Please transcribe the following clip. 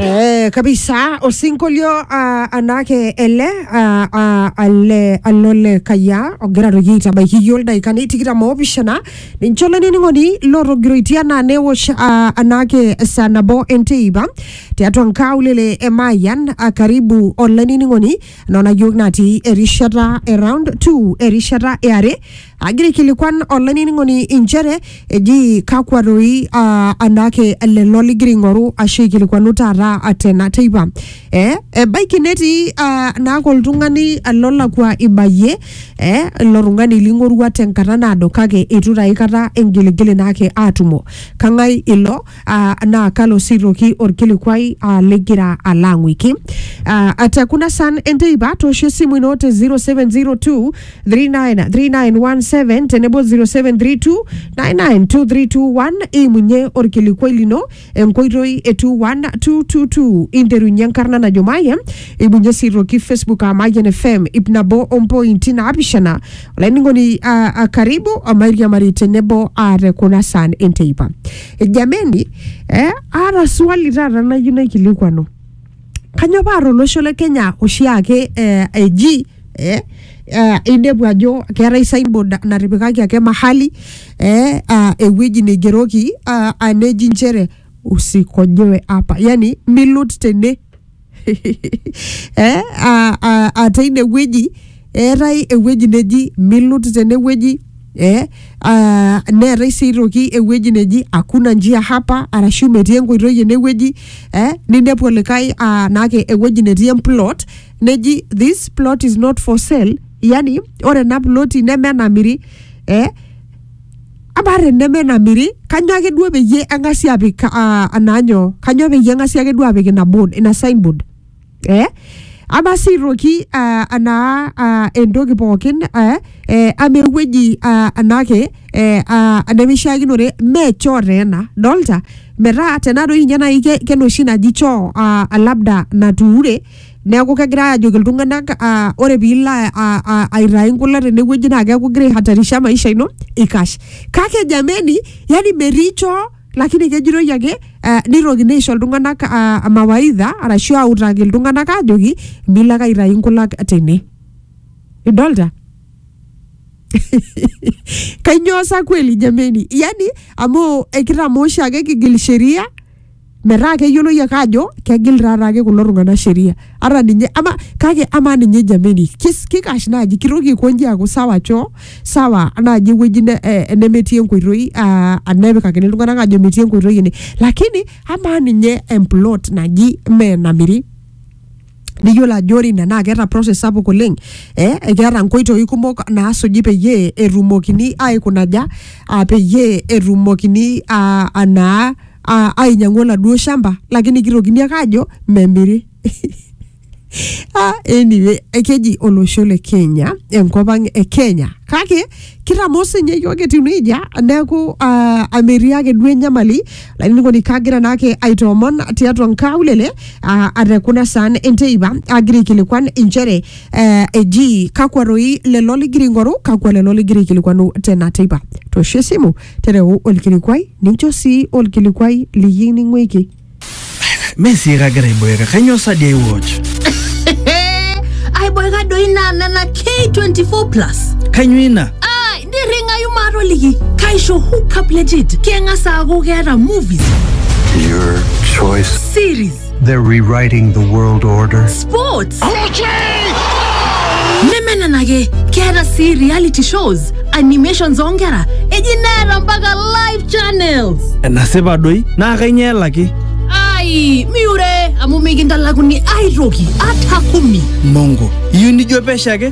Eh, kabisa osinkolio ah, anake ele ah, ah, ale alole kaya ogira toki aitabaiki yiok ildaikani tikitam oopishana ninche olainining'oni lotogiroitia naa newosh ah, anake saa nabo enteipa tiatua nkaulele e Mayan ah, karibu olainining'oni nona yiok natii erishata e round 2 erishata e are agira aikilikuan olainining'oni inchere eji kakwa doi uh, anaake lelo ligira aing'oru ashu aikilikuanu taata tena teipa eh, ebaiki netii uh, naake oltung'ani lolakua ibayie eh, ilo tung'ani ling'orua tenkata naado kake eitu taa aikata ingiligili naake aatumo kang'ae ilo ah, naa kalo siroki orkilikuai ah, ligira alo ang'uiki Ah, ate kuna san enteipa toosho esimu ino te 0702 39 3917 tenebo 0732 992321 imunye orkilikuai lino enkoitoi e 21222 interunye enkarna najo maye imunye siroki facebook a mayen fm ip nabo ompointi naapishana laining'oni ah, ah, karibu amairiamari tenebo ah, te kuna saan enteipa jameni eh, aata swali taata nayieu naikilikuanu kanyoo paa tolosho le kenya oshiake eh, eji eh, eh, inepu ajo keetae signboard na- natipikaki ake mahali eh, ah, ewueji neigeroki ah, ah, neji nchere usikojoe apa yani milut tene eh, a- a- a teine wueji eetae ewueji neji milut tene wueji eh, a- neetae sii aitoki ewueji neji hakuna njia hapa arashu metii enkoitoi ene wueji eh, ninepu olikae ah, naake ewueji netii emplot neji this plot is not for sale yani ore ena ploti neme enamiri eh, amaa teneme namiri kanyo ake duo peyie eng'asi apik ah, anaa nyoo kanyo peyie eng'asi ake duo apik ina board ina signboard eh? ama sii aitoki ah, anaa ah, entoki pookin eh, eh, ama ewueji ah, anake eh, ah, nemeishiakinore mee choo taa ena dolta metaa tena doi ninye nai ke- kenoshi naji choo ah, labda natuure neeku kegirae ajoki iltung'anak ah, ore piilo a- a- a- aitae nkula tenewueji naa keeku igira aihatarisha maisha ino ikash kake jameni yani mericho lakini kejitoi ake ah, nitokini aisho iltung'anak ah, mawaidha arashu autaki iltung'anak ajoki milo ake aitae nkulak tene idolta kainyoo sa kweli jameni yani amu ekitamoo oshiake kigil sheria metaa keyioloi ake ajo kegil taa taake kulo tung'anak sheria ata ninye ama kake amaa ninye jameni kis- kikash naaji kitoki aikonji aaku sawa choo sawa naaji ewueji ne- eh, enemetii enkoitoi ah, nepikakini iltung'anak ajo metii enkoitoi ene lakini amaa ninye emplot naji mee namiri niyiolo ajo ore ina naa keeta process sapuk oleng eh, keeta nkoitoi kumok naasuji peyie etumokini aikunaja ah, peyie etumokini ah, anaa ah, ainyiang'u oladuo shamba lakini kitokini ake aajo memiri Ah, anyway, keji olosho le Kenya enkop ang e Kenya kake kitamoo sinye yiok etiu nejia neeku ah, amiri ake duo enyamali lainining'oni kaagira naake aitoomon tiatua nkaulele ah, ate kuna saan enteipa agira aikilikuan inchere eh, eji kakwa roi lelo ligira aing'oru kakwa lelo ligira aikilikuanu tena teipa toosho esimu tereu olkilikuai nincho sii olkilikuai liyieu ning'uiki Mee sii kagira aiboeka, kainyoo sa dii aiwatch? aiboeka doi naa nena k24 plus Kainyoo ina? nirringayu maatoliki kaisho hookup legit keng'as aaku keeta movies Your choice. series They're rewriting the world order. sports neme nena ake keeta sii reality shows animations oonkera eji neeta mpaka live channels enasipa doi naa kainyoo elaki ai miure amu mikintalakuni aitoki ata kumi mongo iyieu nijo pesho ake